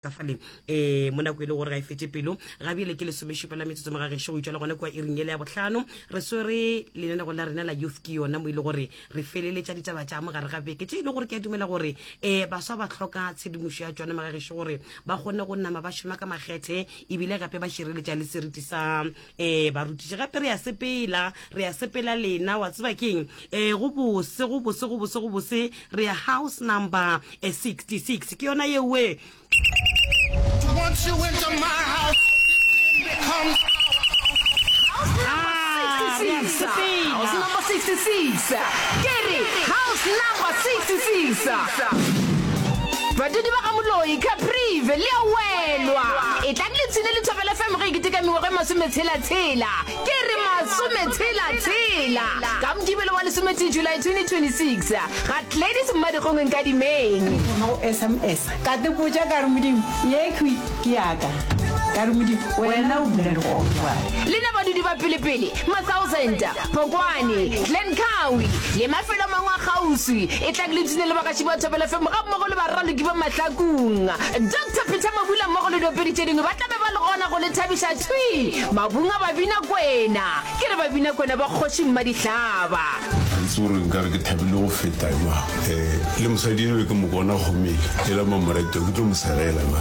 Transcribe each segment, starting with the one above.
ka fale um eh, mo nako e le gore ga e fete pelo ga bjele ke lesomešupa la metsotso ga gešo go itšwa le gona kua iring ele ya botlhano re swere lenanego la rena la youth ke yona mo e le gore re feleletša ditaba tša mogare ga beke tše e le gore ke a dumela gore um baswa ba tlhoka tshedimošo ya tsone maga gešo gore ba kgone go nama ba šoma ka makgethe ebile gape ba šireletša le seriti sa ee barutiši gape re ya sepela re ya sepela lena wa tseba ke eng um go bose go bose go bose go bose re ya house number eh, 66 ke yona yeoe Once you enter my house, it becomes Ah, re ya sepela. House number 66. Ke re, house number 66. Badudi ba ga Moloi, Caprive, le a welwa. E tla Le tshile le thobela fm ge e keteka mengwago e masometshela-tshela ke re masometshela-tshela ka mokibelo wa lesometee july 2026 ga gladys mmadikgongweng ka dimeng ga go sms ka tepotša ka re modimo ye khwi ke yaka ka re modimo wena o bula dikgogo jwale lena badudi ba pelepele mathousanda Phokwane, Glencoe le mafelo a mangwe a kgauswi. E tlang le tune le bagatši ba Thobela FM ga mmogo le baraloki ba Mahlakung. Doctor Peter Mabula mmogo le diopedi tše dingwe ba tla be ba le gona go le thabiša thwi mabung a Babinakwena. Ke re Babinakwena ba Kgoši Mmadihlaba. Gantsi o re nkare ke thabile go feta jwang? Ee, le mosadi enwa ke mo bona go mele, ela mamoretwa ke tlo mo segela na?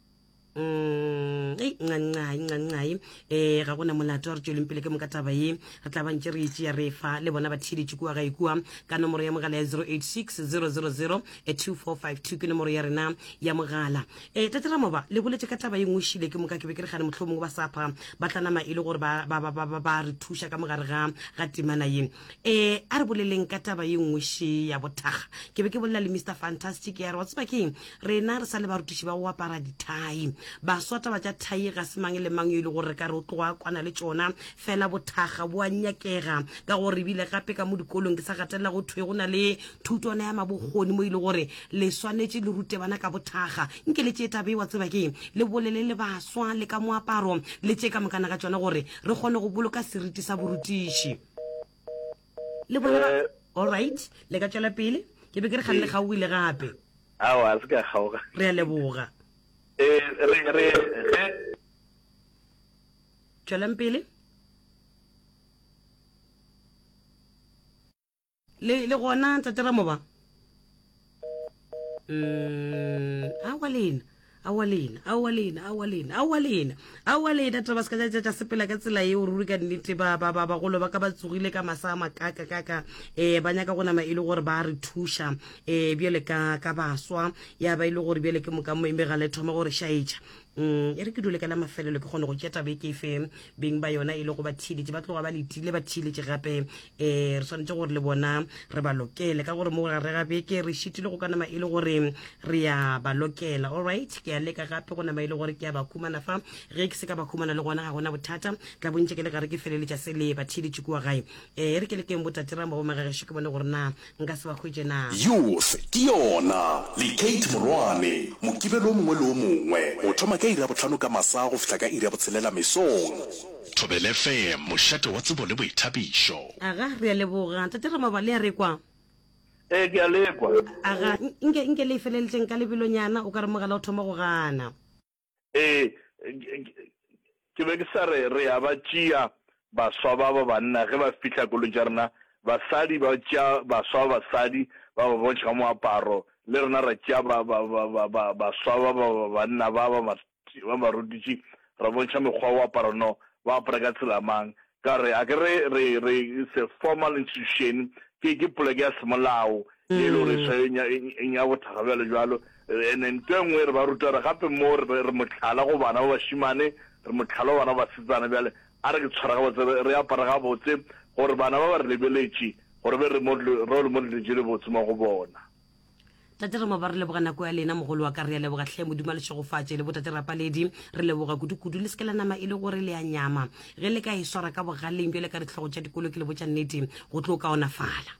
Mm, ei ncancae ncancae um ga gona molato wa re tsweleng pele ke moka taba ye re tla bantse re itse ya re fa le bona ba theeletše kua ga ikua ka nomoro ya mogala ya 086 000 2452 ke nomoro ya rena ya mogala um tate ramoba le boletse ka taba ye nngwe šile ke moka ke be ke re gane motlho mongwe ba sapha ba tla nama e le gore ba re thuša ka mogare ga ga timana ye um a re boleleng ka taba ye nngwe še ya bothaga ke be ke bolela le mr fantastic ya re wa tseba keng rena re sa le barutiši ba go apara dithai baswa taba tša thai ga se mang le mang yo e le gore re ka re o tloga kwana le tšona fela bothaga bo a nyakega ka gore ebile gape ka mo dikolong ke sa gatelela go thwe go na le thutwana ya mabokgoni mo e le gore le swanetše le rute bana ka bothaga nke le tše tabe wa tseba ke le bolele le baswa le ka moaparo le tše ka mokana ka tšona gore re kgone go boloka seriti sa borutiši le bona ba all right le ka tšwela pele ke be ke re ga le gaoile gape ao a se ka kgaoga re a leboga eh re re ge tšwelang pele le le gona tsateramo ba Mm, awa lena awa lena awa lena awa lena awa lena awa lena taba seka ja ja sepela ka tsela eo ruri ka nnete ba ba ba bagolo ba ka ba tsogile ka masa a makaka kaka eh ba nyaka go nama e le gore ba re thuša eh bjale ka ka baswa ya ba ile e gore bjale ke moka mo eme ga le thoma gore shaetša Umm e re ke dule ka la mafelelo ke kgone go tšea taba e ke e fe beng ba yona e le go ba theeletše ba tloga ba letile ba theeletše gape um re swanetše gore le bona re ba lokele ka gore mo gare ga beke re šitile go ka nama e le gore re ya ba lokela allright ke a leka gape go nama e le gore ke a ba khumana fa ge ke se ka ba khumana le gona ga gona bothata tla bontše ke le gare ke feleletša se le ba theeletše kua gae um e re ke lekeng botaterang ba bomagagešo ke bone gore na nka se ba hwetše na? Youth ke yona, le Kate Morwane, Mokibelo o mongwe le o mongwe, go thoma ka iri ya bohlano ka masa go fihla ka iri ya botshelela mesong. Thobela FM, mošate wa tsebo le boithabišo. Aga, re a leboga. Tate Ramaba, le a re kwa? Ee, ke a le kwa. Aga, nke, nke le e feleletše nka lebelonyana, o ka re mogala o thoma go gana. Ee, ke be ke sa re, re ya ba tšea baswa ba ba banna ge ba fihla kolong tša rena, basadi ba tšea baswa ba basadi ba ba bontšha ka moaparo, le rena ra tšea baswa ba ba banna ba ba marutiši ra bontšha mekgwa ya go apara, no ba apara ka tsela mang, ka re a ke re re re it's a formal institution ke ke poleke ya semolao ye le gore swa e nya bothakga bjalo bjalo ene nto engwe re ba ruta re gape mo re re motlhala go bana ba bashimane re motlhala go bana ba basetsana bjale a re ke tshwara ga botse re apara ga botse gore bana ba ba re lebeletše gore be re role model je le botse mo go bona tate re maba re leboga nako ya lena mogolo wa ka re ya leboga tlhe modimo le šegofatše le botate rapaledi re leboga kudu-kudu le seke la nama e le gore le ya nyama ge le ka e swara ka bogaleng bjale ka ditlhogo tša dikolo ke le botša nnete go tlo kaonafala